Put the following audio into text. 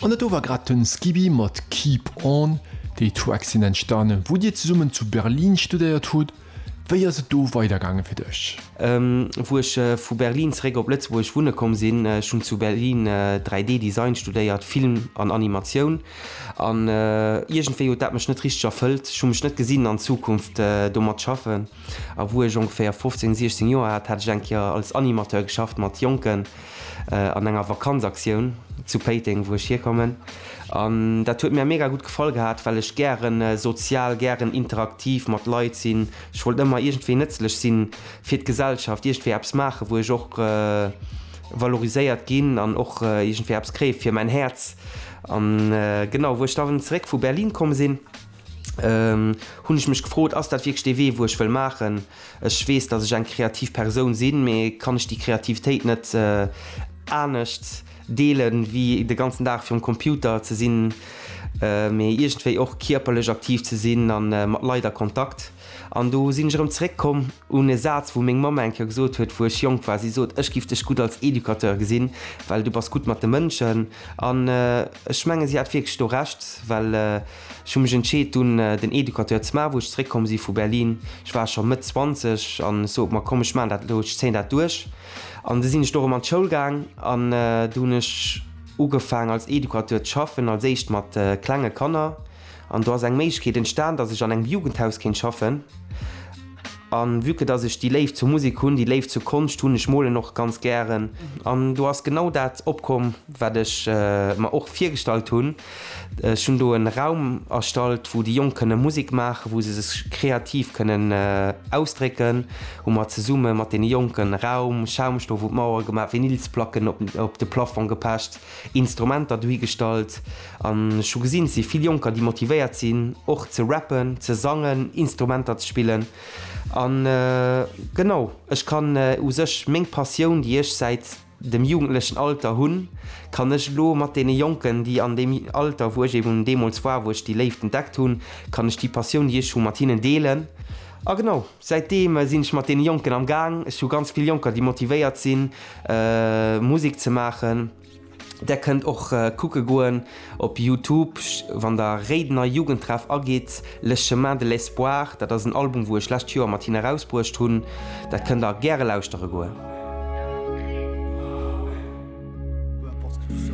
An dat do war grad den Skibby mat Keep On. Déi Tracks sinn entstanen wou dir zesummen zu Berlin studéiert hutt. Wéi ass et do weider gaangen fir dech? Wou ech vu Berlin zeréck op Lëtzebuerg wunne komm sinn, ech hunn zu Berlin 3D Design studéiert, Film an Animatioun an iergendwéi huet dat mech net richteg erfëllt. Ech hu mech net gesinn an Zukunft domat schaffen. A wou ech ongeféier 15, 16 Joer hat, hat ech eng Kéier als Animateur geschafft mat Jonken an enger Vakanzaktioun zu Péiteng, wou ech hierkommen. An dat huet mir mega gutt gefall gehat, well ech gären sozial, gären interaktiv mat Leit sinn. Ech wollt ëmmer iergendwéi nëtzlech si fir d'Gesellschaft, iergendwéi eppes maachen, wou ech och valoriséiert ginn an och iergendwéi eppes kréie fir mäin Häerz. An genau, wou ech da zeréck vu Berlin komm sinn, hunn ech mech gefrot, ass dat wierklech dee Wee wou ech wëll maachen? Ech weess, datt ech eng kreativ Persoun sinn, mee kann ech déi Kreativitéit net anescht deelen, wéi de ganzen Dag virum Computer ze sinn, mee iergendwéi och kierperlech aktiv ze sinn a mat Leit a Kontakt? An do sinn ech erëm zeréck komm un e Saz wou meng Mamm eng Kéier gesot huet wou ech jonk war, si sot, ech giff dech gutt als Educateur gesinn, well du bass gutt mat de Mënschen. An ech mengen si hat wierklech do Recht, well. Ech hu mech entscheet dunn den Educateur ze maachen wou ech zeréck komm si vu Berlin. Ech war scho Mëtt 20 an ech sot mer komm ech maachen dat elo, ech zéien dat duerch. An du sinn ech do erëm an d'Schoul gaang an do hunn ech ugefaang als Educateur ze schaffen, als éischt mat klenge Kanner an do ass eng Méiglechkeet entstan datt ech an engem Jugendhaus kéint schaffen. A vue que datt ech déi Léift zur Musek hunn, déi Léift zur Konscht hunn, ech molen och ganz gären an do ass genau dat opkomm wat ech mer och virgestallt hunn. Ech hunn do en Raum erstallt wou déi Jonk kënne Musik maachen, wou se sech kreativ kënnen ausdrécken, hu mer zesumme mat deene Jonken e Raum, Schaumstoff un d'Mauere gemaach, Vinylsplacken op de Plafong gepecht, Instrumenter dohi gestallt an ech hu gesinn, et si vill Jonker déi motivéiert sinn och ze rappen, ze sangen, Instrumenter ze spillen an genau, ech kann u sech meng Passioun déi ech säit dem jugendlechen Alter hunn, kann ech elo mat deene Jonken, déi an deem Alter, wou ech eben deemools war, wou ech déi Léift entdeckt hunn, kann ech déi Passioun, déi ech hu, mat hinnen deelen. A genau säitdeem sinn ech mat deene Jonken am Gaang. Ech hu ganz vill Jonker, déi motivéiert sinn, Musek ze maachen. Där kënnt och kucke goen. Op Youtube, wann der Réidener Jugendtreff agitt, Le Chemin de l'Espoir, dat ass en Album wou ech lescht Joer mat hinnen erausbruecht hunn, dat kënnt der gäre lauschtere goen.